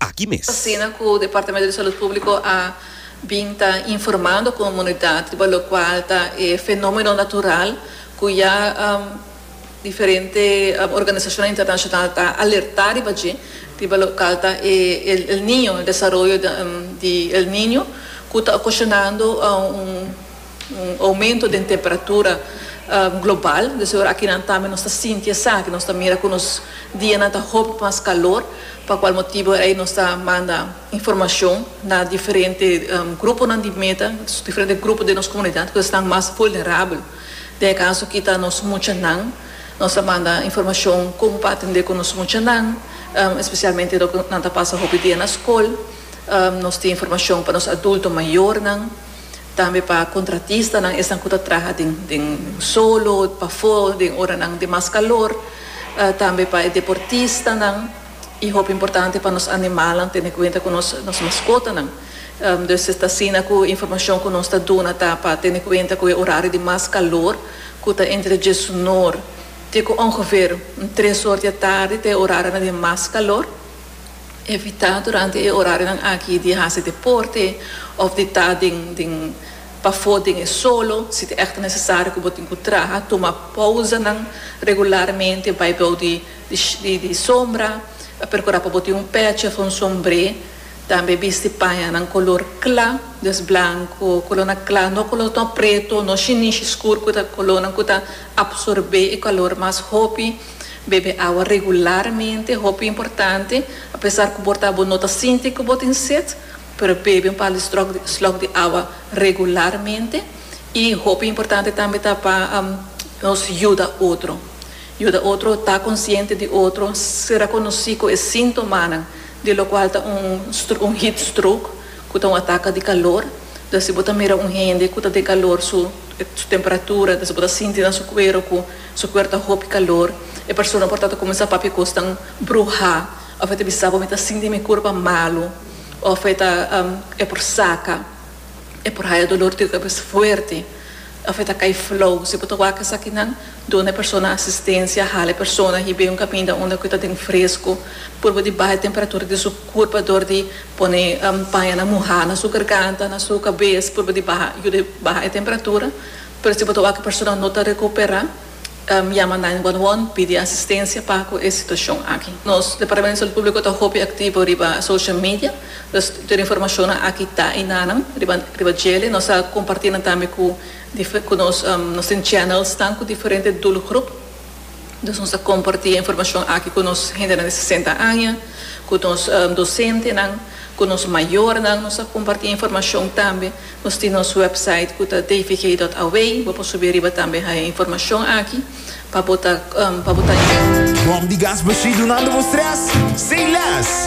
aki mes. Asina ku Departamento di Salud Públiko a bin ta informando komunidat riba lokual ta e fenómeno natural ku ya diferente organisashonnan internashonal ta alertá riba dje, riba lokal ta e El Niño, e desaroyo di El Niño ku ta okashonando un. Un oumento den temperatura global, desor aki nan tambe nos ta sinti esaki, nos ta mira ku nos dianan ta hopi mas kalor, pa kual motibu ei nos ta manda informashon na diferente gruponan di meta, diferente grupo den nos komunidat ku esnan mas vulnerabel, den e kaso aki ta nos muchanan, nos ta manda informashon kon pa atendé ku nos muchanan, espesialmente lo ku nan ta pasa hopi dia na skol, nos tin informashon pa nos adulto mayornan, Tambe pa kontratistanan, esnan ku ta traha den den solo, pafó, den ora nan di mas kalor. Tambe pa e deportistanan i hopi importante pa nos animalnan tene kuenta ku nos nos maskotanan. Dus e ta asina ku e informashon ku nos ta duna ta pa tene kuenta ku e orario di mas kalor ku ta entre diesunor ti ku ongever tres or di e tardi ta e orarionan di mas kalor. Evitá durante e orarionan aki di hasi deporte òf di ta den den pafó den e solo. Si ta èkto nesesario ku bo tin ku traha, tuma pousanan regularmente, bai bou di di di sombra, perkurá pa bo tin un pèchi òf un sombré. Tambe bisti pañanan kolor kla, des blanku, kolornan kla, no kolornan preto, no shinishi skur ku ta kolornan ku ta apsorbé e kalor mas hopi. Bebe awa regularmente hopi importante, a pesar ku por ta bo no ta sinti ku bo tin set, pero bebe un par di slòk di awa regularmente i hopi importante tambe ta pa nos yuda otro. Yuda otro ta konsiente di otro, ser a konosí ku e síntomanan di lokual ta un un heat stroke ku ta un ataka di kalor. Entonces si bo ta mira un hende ku ta den kalor su temperatura, entonces bo ta sinti na su kuero ku. Su kuer ta hopi kalor. E persona por ta ta kuminsá papia kosnan bruhá òf e ta bisa bo mi ta sinti mi kurpa malu òf e ta e por saka, e por haya dolor di kabes fuerte òf e ta kai flou. Si bo ta wak esakinan duna e persona asistensia, hala e persona hib'é un kaminda unda ku e ta den fresku. Por bo di baha e temperatura di su kurpa dor di pone pañanan muhá na su garganta, na su kabes, por bo di baha yuda baha e temperatura. Pero si bo ta wak e persona no ta recuperá, yama nine one one, pidi asistencia pa cu e situacion aki. Nos Departamento di Salud Público ta hopi activo riba social media, dus tur e informacionnan aki ta y nanan riba riba djele. Nos ta compartinan tambe cu nos tin channelsnan cu diferente doelgroep. Dus nos ta kompartí e informashon aki ku nos hendenan di sesenta aña, ku nos dosentenan, ku nos mayornan. Nos ta kompartí e informashon tambe. Nos tin nos wèpsait ku ta dvg.away. Bo por subi riba tambe haña e informashon aki pa bo ta pa bo ta. Bòm di gas bashí dunando bo strès sin lès.